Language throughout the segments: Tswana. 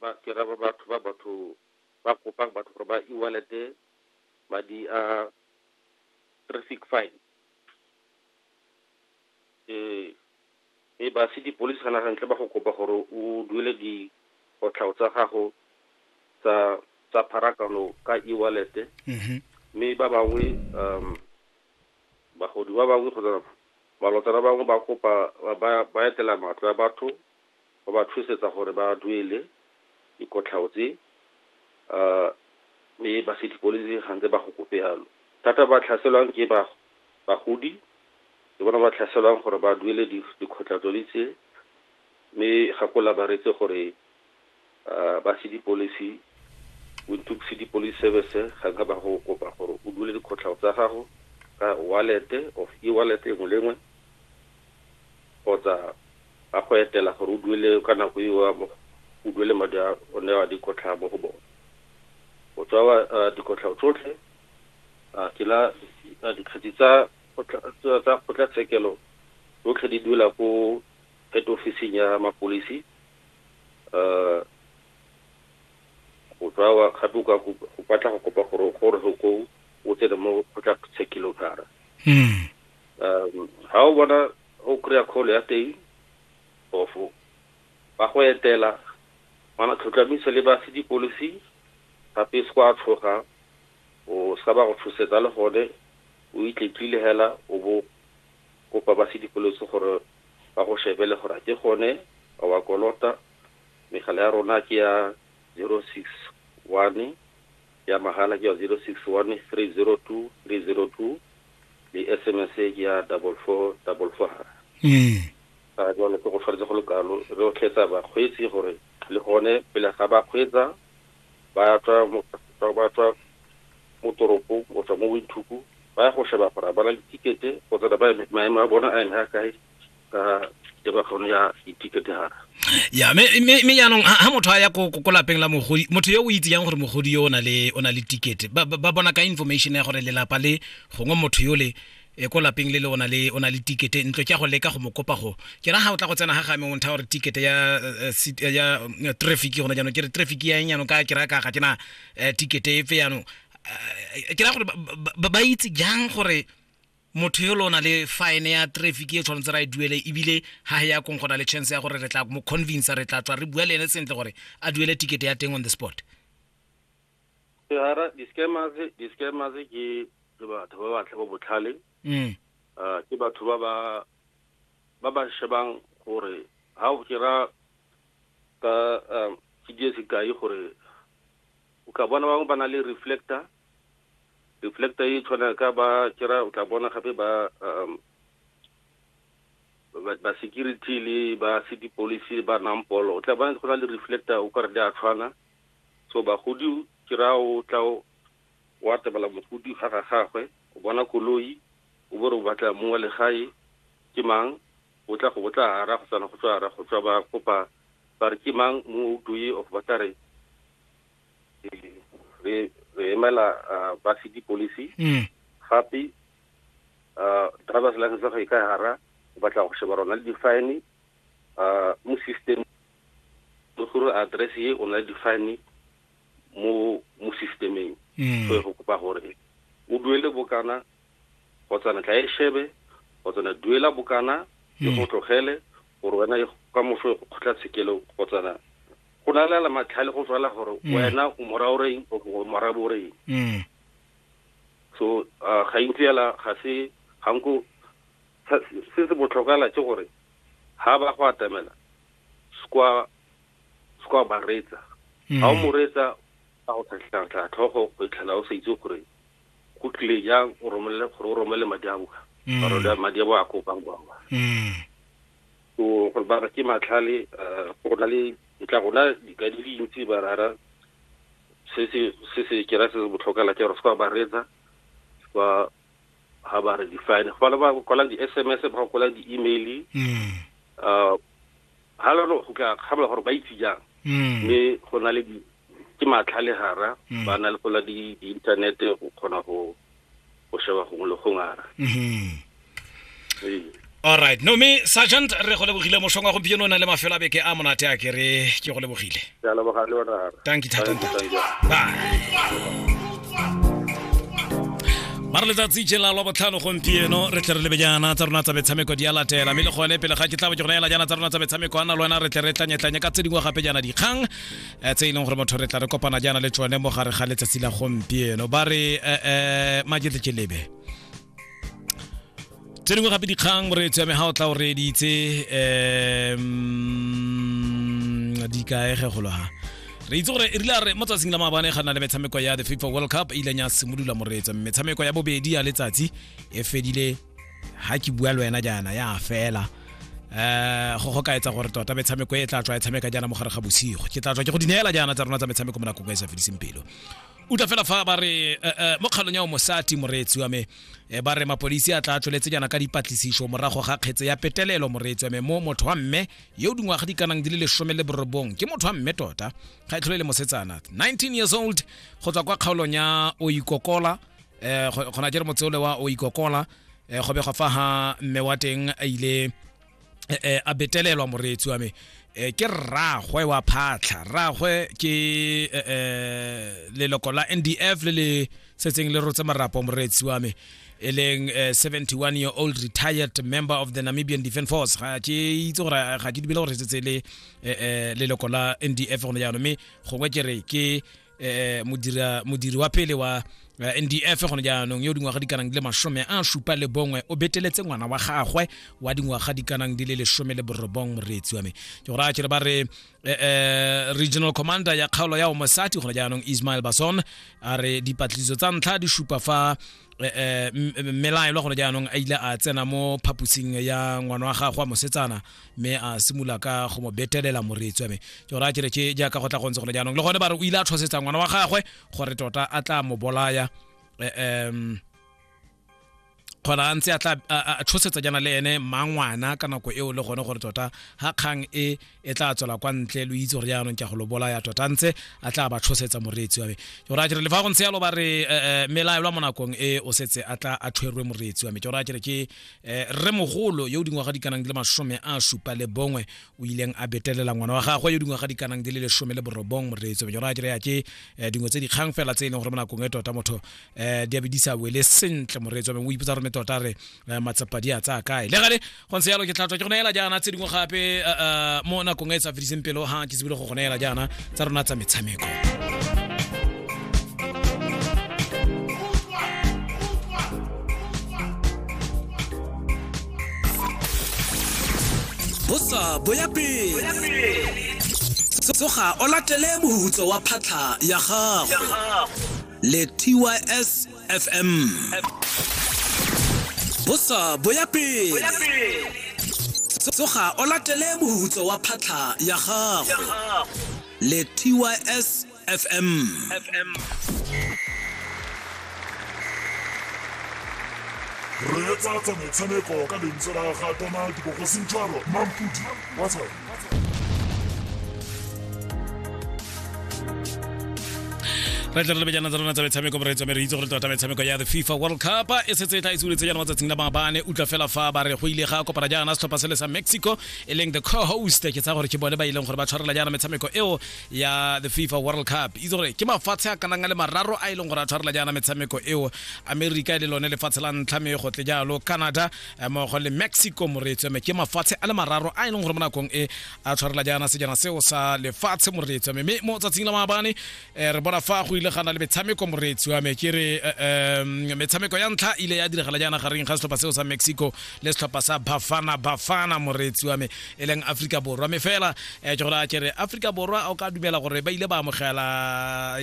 ba ke ra ba batho ba batho ba kopang batho gore ba e-wallete madi a traffic fine um e ba city police ga nagantle ba go kopa gore o duele dikotlhao tsa gago tsa tsa pharakano ka e-wallete mm-hmm. mme ba bangwe um bagodi ba bangwe kgotsa malotsana bangwe ba kopa ba etela matlo ya batho wa ba tshosetsa gore ba duele dikotlhao tse, mme ba se di koletse ga ntse ba go kope yalo. Thata ba tlhaselwang ke bagodi, ke bona ba tlhaselwang gore ba duele dikgotlatsodi tse, mme gakola ba reetse gore. ba Sedipolisi, Windhoek City Police Service, ga nka ba go kopa gore o dule dikgotlhao tsa gago ka wallet of e-wallet engwe le engwe kgotsa ba go etela gore o duele ka nako eo o duele madi a o ne wa dikotlhao mo go bone. O tswa dikotlhao tsotlhe ke la dikgetsi tsa kgotlatshekelo tsotlhe di duela ko head office-ing ya mapodisi uh, go tswa wa gape ka go batla go kopa gore gore go ko o tsene mo go tla tshekilotara mm um ha o bona o kry-a call ya teng ofo ba go etela mana tlhotlhamiso le ba se di-policy gape se kwa tshoga o sa ba go tshosetsa le gone o itletlile hela o bo kopa ba se di-policy gore ba go shebe le gore a ke gone a wa kolota. Megala ya rona ke ya 061 ya mahala ke ya 061 302 302 le sms ke ya double four double four mm. a jalo ke go tshwanetse go le kalo re o tlhetsa bakgweetsi gore le gone pele ga ba kgweetsa ba tswa ba tswa mo toropong go tswa mo winthuku ba ya go sheba gore ba na le tikete go tsena ba maemo a bona a eme a kae ka tebakgano ya ditikete gara ya mme jaanong ga motho a ya ko lapeng la mogodi motho yo o itse yang gore mogodi yo o na le tikete ba bona ka information ya gore lelapa le gongwe motho yo le e ko lapeng le le ona le ona le tikete ntlo ke go leka go mo kopa go ke ra ha o tla go tsena ga ga me o ntha gore tikete ya eh, eh, ya eh, traffic gona jaanong ke re traffic ya eng jaanong ka ke ra ka ga ke na tikete efe jaanong ke ra gore ba itse jang gore motho yo lona le fine ya traffic e tshwanetse ra e duele ebile ha ya kong gona le chance ya gore re tla mo convince re tla tswa re bua le ene sentle gore a duele ticket ya teng on the spot ke hara di-scammers di-scammers ke ke batho ba batle ba botlhale mm. uh, ke batho ba ba ba ba shebang gore ha o kira ka um ke die sekai gore o ka bona bangwe ba na le reflector reflector e tshwana ka ba kira o tla bona gape ba um ba security le ba city policy ba nampolo o tla bona go na le reflector o kare di a tshwana so bagodi ke ra o tla wa tebela mogodi ga ga gagwe o bona koloi o bo re o batla mong wa legae ke mang o tla go botla ara go tsana go tswa ara go tswa ba kopa ba re ke mang mong o doye of ba tla re re re emela ba city policy mm. gape driver's license ga e ka hara o batla go sheba rona le di-fine mo system le gore address ye o na le difane mo mo systemeng mm. so go kopa gore o duele bokana kgotsana tla e shebe kgotsana duela bokana e mm. go tlogele gore wena e ka moso e go kgotla tshekelo kgotsana go na le la matlhale go tswala gore mm. wena o mora o reng o mora bo reng so ga intsi yala ga se ga nko se se botlhokala ke gore ha ba go atamela skwa skwa ba retsa mm. ha o mo retsa a go tlhatlha tlhogo go itlhela o sa itse gore go tlile jang o romele gore o romele madi a boa mm. gore da madi a boa a kopang kwa kwa mm. so gore ba ke matlhale eh, go na le ntla gona di ka di dintsi ba rara se se se se kera se botlhokala ke gore se ba retsa ba ga ba re define go bana ba kwala di-sms ba go kwala di-email mm. uh, ga lano go tla kgamela gore ba itse jang mm. mme go na le ke matlha le gara mm. ba na le gola di-internet go kgona go sheba gongwe le gongwe ara mm-hmm. alright no me sergeant re go lebogile mosong wa gompieno o na le mafelo a beke a monate a kere ke go lebogile tanki thatanta ba re letsatsi je la lwa botlhano gompieno re tle re lebe jaana tsa rona tsa metshameko di a latela mme le gone pele ga ke tla bo ke go neela jaana tsa rona tsa metshameko a na le wena re tle re tlanyetlanye ka tse dingwe gape jaana dikgang eh, tse e leng gore motho re tla re kopana jaana le tsone mo gare ga letsatsi la gompieno ba re um eh, eh, majetlejeleebe tse dingwe gape dikgang moreetsi ya me ga o tla o reeditse um di kaege golo ha re itse gore erile a re mo tsatsing la maabane ga nna le metshameko ya the fifa world cup e ileng ya simolola moreetsa metshameko ya bobedi ya letsatsi e fedile ha ke bua le wena jaana ya fela eh go go ka etsa gore tota metshameko e tla tswa e tshameka jaana mo gare ga bosigo ke tla tswa ke go di neela jaana tsa rona tsa metshameko mo nakong e sa fediseng pelo o tla fela fa ba re eh, eh, mo kgalong ya o mosati moreetsi wa me eh, ba re mapodisi a tla tsweletse jaana ka dipatlisiso morago ga kgetse ya petelelo moreetsi wa me mo motho wa mme yo o dingwaga di kanang di le lesome le borobong ke motho wa mme tota ga e tlhole e le mosetsana 19 years old go tswa kwa kgaolong ya o ikokola eh, go- gona jere motseole wa o ikokola eh, go begwa fa ga mme wa teng a ile eh, eh, a betelelwa moreetsi wa me eh, ke rragwe wa phatlha rragwe ke eh, eh, leloko la ndf le le setseng le rotse marapo moreetsi wa me e leng eh, 71 year old retired member of the namibian defence force ga ke itse gore ga ke dibele gore setse le eh, eh, leloko la ndf gone jaanong mme gongwe ke re ke eh, modira modiri wa pele wa eh, ndf gone jaanong yo dingwaga di kanang di le masome a supa le bongwe o beteletse ngwana wa gagwe wa dingwaga di kanang di le lesome le borobong moreetsi wa me ke gore a kere ba re eh, eh, regional commander ya kgaolo ya omosati gone jaanong ismail bason a re dipatlisiso tsa ntlha di supa fa eh, eh, m- m- mmelaelwa gone jaanong a ile a tsena mo phaposing ya ngwana wa gagwe wa mosetsana mme a simolola ka go mo betelela moretswa me ke gore a kere ke jaaka go tla go ntse gone jaanong le gone ba re o ile a tshosetsa ngwana wa gagwe gore tota a tla mo bolaya um kgona a ntse a tla a tshosetsa jana le ene mangwana ka nako eo le gone gore tota ga kgang e e tla tswela kwa ntle lo itse gore jaanong ke go lo bolaya tota a ntse a tla ba tshosetsa moreetsi wa me ke gore a kere le fa go ntse yalo ba re melaelwa mo nakong e o setse a tla a tshwerwe moreetsi wa me ke gore a kere ke eh, rre mogolo yo o dingwaga di kanang di le masome a supa le bongwe o ileng a betelela ngwana wa gagwe yo dingwaga di kanang di le lesome le borobong moreetso menyo ra kry-a ke eh, dingwe tse dikgang fela tse e leng gore mo nakong e tota motho um di a be di sa wele sentle moreetso mengwe o ipotsa gore me tota re eh, matsapa di a tsaya kae le gale go ntse yalo ke tlhatswa ke go neela jaana tse dingwe gape mo nakong e e sa fediseng pelo ga ke tsebile go go neela jaana tsa rona tsa metshameko bosa boya pele tsoga o latele mohutso wa phatlha ya gago le tys fm bosa bo ya pele tsoga o latele mohutso wa phatlha ya gago le tys fm reetsa tsa motshameko ka lentswe la ga tona dibogosintshwaro mampudi wa tshwana re tle re lebe jaana tsa rona tsa metshameko re tswa re itse gore tota metshameko ya the fifa world cup e setse e tla itsuletse jaana matsatsing la maabane utlwa fela fa ba re go ile ga kopana jaana setlhopha sele sa mexico e leng the co-host ke tsaya gore ke bone ba ileng gore ba tshwarela jaana metshameko eo ya the fifa world cup itse gore ke mafatshe a kanang a le mararo a e leng gore a tshwarela jaana metshameko eo america e le lone lefatshe la ntlha me go tle jalo canada eh, mmogo le mexico moreetso mme ke mafatshe a le mararo a e leng gore mo nakong e a tshwarela jaana sejana seo sa lefatshe moreetso mme mo tsatsing la maabane um eh, re bona fa go ile gana le metshameko moreetsi wa me ke re eh, metshameko ya ntlha ile ya diragala jaana gareng ga setlhopha seo sa mexico le setlhopha sa bafana bafana moreetsi wa me e leng aforika borwa mme fela um ke gore ke re aforika borwa o ka dumela gore ba ile ba amogela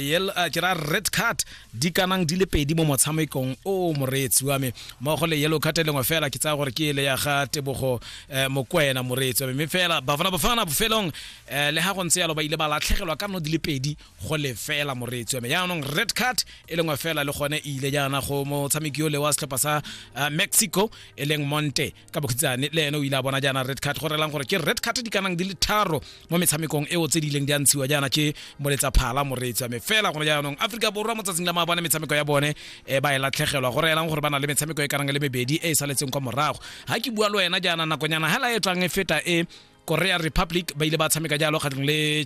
ke ra red card di kanang di le pedi mo motshamekong o o moreetsi wa me mmogo le yellow card e lengwe fela ke tsaya gore ke ele ya ga tebogo eh, mokwena moreetsi wa me mme fela bafana bafana bofelong eh, le ga go ntse yalo ba ile ba latlhegelwa ka nno di le pedi go le fela moreetsi wa me jaanong red card e lengwe fela le gone e ile jaana go motshameki yo le wa setlhopha sa eh, mexico e leng monte ka bokhitsane le ene o ile a bona jaana red card go relang gore ke red card di kanang di le tharo mo metshamekong eo tse di ileng di a ntshiwa jaana ke moletsa phala moreetsi wa me fela gone jaanong aforika borwa mo tsatsing la maabane metshameko ya bone um ba e latlhegelwa go reelang gore ba na le metshameko e kanang le mebedi e e saletseng kwa morago ga ke bua le wena jaana nakonyana hela e tswang e feta e korea republic ba ile ba tshameka jalo kgatlhong le